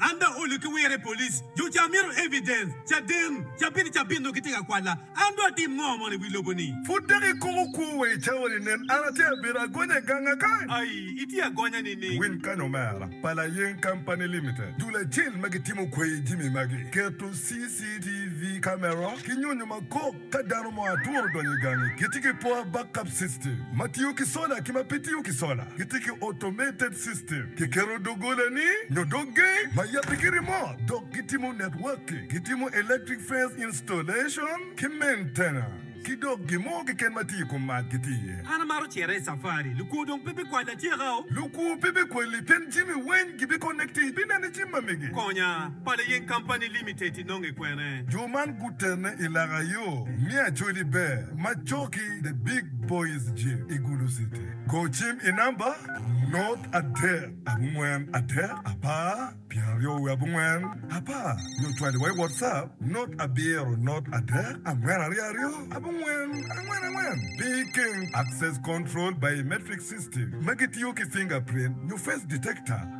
An dong olu ki wire police jo ca mito evidence caden cabit cabit nongo gitye ka kwala an dong atim ngo mono iwi lobo ni. Pud dok ikumo kwo wa i cawa ni nen an atye abedo agonya ganga ka. Ayi itye agonya nining. Win kany omera pa Layeng Company Limited, dul acel ma gitimo kwayi jimi magi, keto CCTV camera ki nyonyo makop. Ka dano mo atworo odonyo i gangi, gitye ki poor backup system ma tiyo ki sola ki ma pe tiyo ki sola. Gitye ki automated system, kiketo doggolani nyo dog gate ma yabbe ki remote, dok gitimo networking, gitimo electric fence installation ki maintenance, ki dok gin mo keken ma tye i kom mac gitye iye. An amaro cito i safari. Lukwo dong pe bikwalla atyeka-o. Lukwo pe bikwalli pien jami weny gibiconnecti ibineno i jim ma mege. Konya, Pala Yeng Company Limited. inonge kwene? Jo man gutene i laka yo me Acholi Ber ma coki The Big Boys Gym i Gulu City. Go cim i namba, not adek abongwen adek apar pyeraryo wiye abongwen apar nyo cwali wa i WhatsApp, not abiro not adek angwen aryo aryo abongwen angwen angwen. Picking, Access Control Biometric System ma gitiyo ki fingerprint nyo face detector.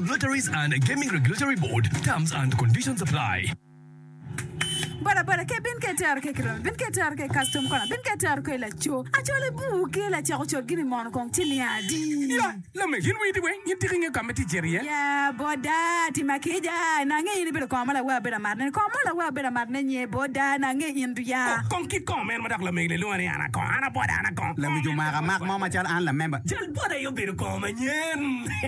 Lotteries and Gaming Regulatory Board, Terms and Conditions Apply. Boda boda ke bin ke tero ke kiromi bin ke tero ke custom kona bin ke tero ke laco acol i buu ke lacek ocol gini mono kong ci ni adi ya lame gin witi weng in tiki nge ka me ti ceri ye ya boda ti ma ke ja na nge in ibedo kong ma lawe abedo amar ne kong mo lawe abedo amar ne nye boda na nge in du ya oh, kong kit kong meno ma dok lamegi ne lwongo ni ana kong ana boda ana kong lawic omaka mak mo ma cal an lamemba jal boda aye obedo kong ma nyen.